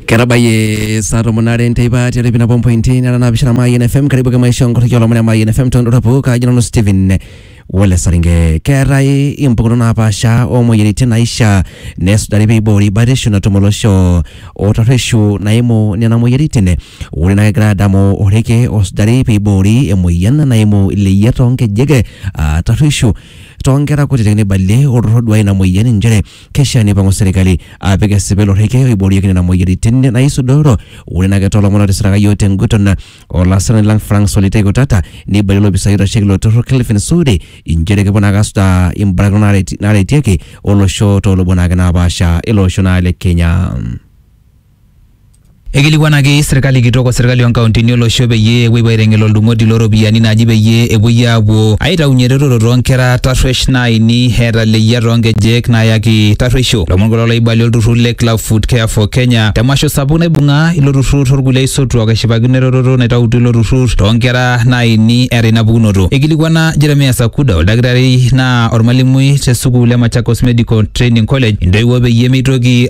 ketabayie saa tomon are enteipa tiatua ipina pompointi nara naapishana mayian fm karibu ke maisha onkorriki olomon e mayian fm tondora pooka ajo nanu stephen wole saringe keetae impukunot napaasha oomoyiaritin naishaa nesujari peiboori batisho natum olosho otarreshu naimu nena moyiaritin ore naa kegira adamu oreke osujari peiboori emoyian naimu ileyiat toonkejek aa tarreshu toonkera kutitik neibalie olturrur oduaya ina moyian inchere Keishaa neipang'u serkali apik esipil orrekie oiboorieki nena moyiaritin naisudoro. Ore naa ake too lomon otisiraka iyiook te nguton o lasirani lang Frank Solitei Kutata neibalie olopisai oitasheki ilo turrur Kelvin Sudi inchere kepuo naake asujaa imbarakinot naareti naaretieki olosho too lubot naake napaasha ele osho naa le Kenya. Eikilikuanaki serkali kitok o serkali oonkauntini olosho peyie epuo aiteng'el oldung'oti loo ropiyiani naaji peyie epuoi aapuo aitaunye eretoto too nkera tarruesh naaini eeta leyia too nkejek naayaki tarrueisho. Lomon kulo looibali olturrur le Club Foot Care for Kenya te masho sapuk naibung'a ilo turrur o lkulie aisotuak eshipakino eretoto naitautuo ilo turrur too nkera naaini eeta ina pukunoto. Eikilikuana Jeremiah Sakuda, oldakitari naa olmalimui te sukuul e Machakos Medical Training College intoiwuo peyie meitoki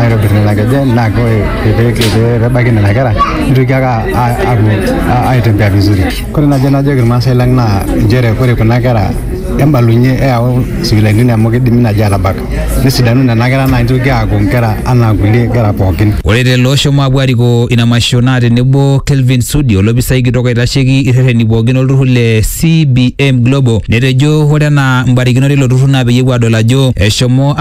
aitobir nena kejen naa ore pee ebaiki nena kera nitoki ake apuo aitembea vizuri. Ore naaji najoki irmaasai lang naa nchere ore kuna kera embalunye eyau sipitalini amu kidimi naaji aatabak nesidanu nena kera naa nitoki aaku nkera anaa kulie kera pookin. Ore lelo oshomo apuo arikoo ina masho naa tenebo Kelvin Sudi olopisai kitok oitasheki irreteni pookin olturrur le CBM Global netejo ore enaa mbarikinot eilo turrur naa peyie epuo aadol ajo eshomo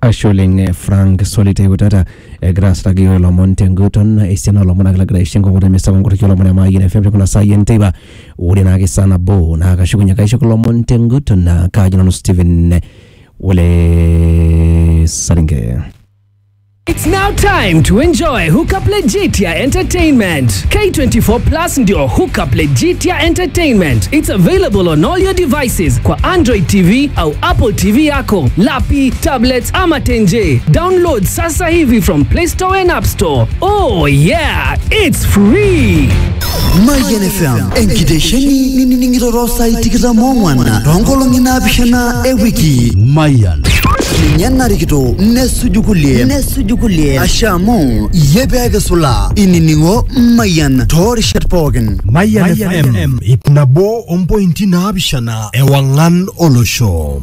Ashe oleng Frank Solitei Kutata egira asiraki iyiook ilomon tenguton esiana oolomon ake lagira aisho enkukuo temisa onkoraki olomon e Mayian FM tekuna saai enteipa ore naake saa nabo naa kashukunye ake aisho kulo omon tenguton naa kaaji nanu Stephen Ole Saringe. It's now time to enjoy Hookup Legitia Entertainment. K24 Plus ndio Hookup Legitia Entertainment. It's available on all your devices kwa Android TV au Apple TV yako. yako, lapi, tablets ama tenje. Download sasa hivi from Play Store and App Store. Oh yeah, it's free. Mayian FM enkitesheni ninining'iroro saai tikitam oong'wan toonkolong'i naapishana e wiki Mayian ninye narikito nesuju kulie nesuju kulie asha amu iyie pee kisula inining'o Mayian toorishat pookin Mayian FM ip nabo ompointi naapishana ewang'an olosho